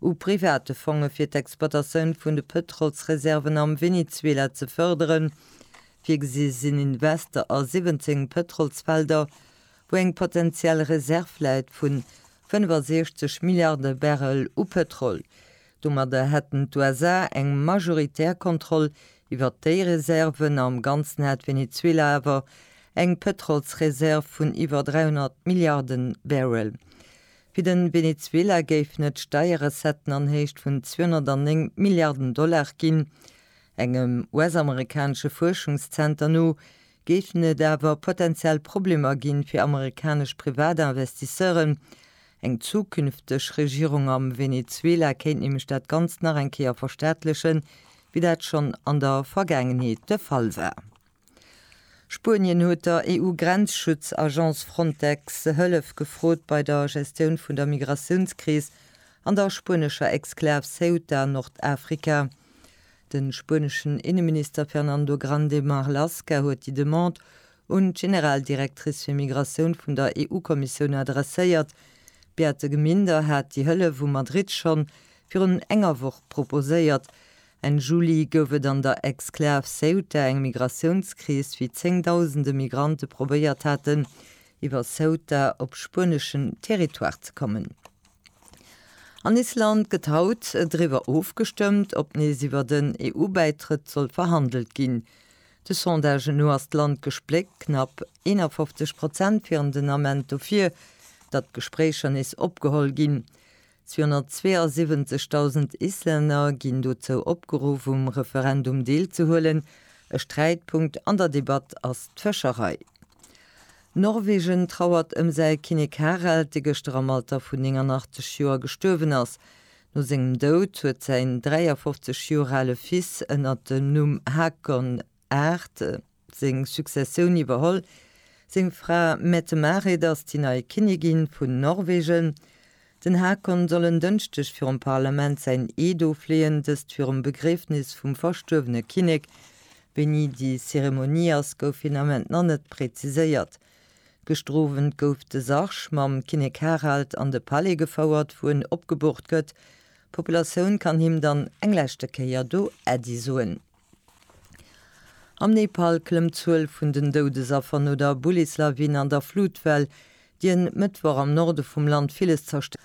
u private Fonge fir d'Exploitatioun vun de Pëtrolsreserven am Venezuela ze fërderen. Virgesi sinn Investe a 17 Pëtrolsfelder, wou eng potentiell Reserv läit vu 65 Milliarde Barrel u Pëtrol. Domadder hätten d'USA eng majoritär Kontroll iwwert déi Reserven. Am Ganzen hätt Venezuela awer eng Pëtrolsreserv vun iwwer 300 Milliarde Barrel. Fir de Venezuela géifen et Steierrecetten an Héicht vun 209 Milliarden Dollar ginn. Engem US-amerikanesche Fuerschungszenter no géifen et awer potenziell Problemer gi fir amerikanesch Privatinvestisseuren. Eng zukünfteg Regierung am Venezuela kéint nämlech dat Ganzt nach eng Kéier verstaatlechen, wéi dat schonn an der Vergaangenheet de Fall war. Spuenien huet der EU-Grenzschutz-Agence Frontex Hëllef gefrot bei der Gestioun vun der Migratiounskris an der spuenescher Exklav Ceuta, Nordafrika. De spueneschen Inneminister Fernando Grande Marlaska huet déi Demande un d'Generaldirectrice fir Migratioun vun der EU-Kommissioun adresséiert. D'Beate Gminder hat déi Hëllef u Madrid schonn virun enger Woch proposéiert. Enn Juli gouf et an der Exklav Ceuta eng Migratiounskris, wéi zéngdausende Migrante probéiert haten, iwwer Ceuta op spueneschen Territoire ze kommen. An Island gëtt haut driwwer ofgestëmmt, ob nees iwwer en EU-Bäitrëtt soll verhandelt ginn. De Sondagen no ass d'Land gespléckt, knapp 51 Prozent wieren den Ament dofir, datt d'Gespréicher nees opgeholl ginn. 272.000 Islänner ginn dozou opgeruff, um Referendum deelzehuelen. E Sträitpunkt an der Debatt ass d'Fëscherei. Norwegen trauert ëm säi Kinnek Harald, dee gëschter am Alter vun 89 Joer gestuerwen ass. No sengem Doud huet säin 53 Joer ale Fils ënnert dem Numm Hakon. Art. Seng Successioun iwwerholl. Seng Fra Mette-Marit ass déi nei Kinnigin vun Norwegen. Den Haakon soll en Dënschdeg virum Parlament säin Eed ofleeën, dëst virum Begriefnis vum verstuerwene Kinnek. Wéini déi Zeremonie ass, gouf fir den Ament nach net präziséiert. Gestrowent gouf de Sarg mam Kinnek Harald an de Palais gefouert, wou en opgeboort gëtt. D'Populatioun kann him dann eng leschte Kéier do Äddi soen. Am Nepal klëmmt d'Zuel vun den Doudesaffer no der Bullislawin an der Flutwell, déi en Mëttwoch am Norde vum Land villes zerstërt huet.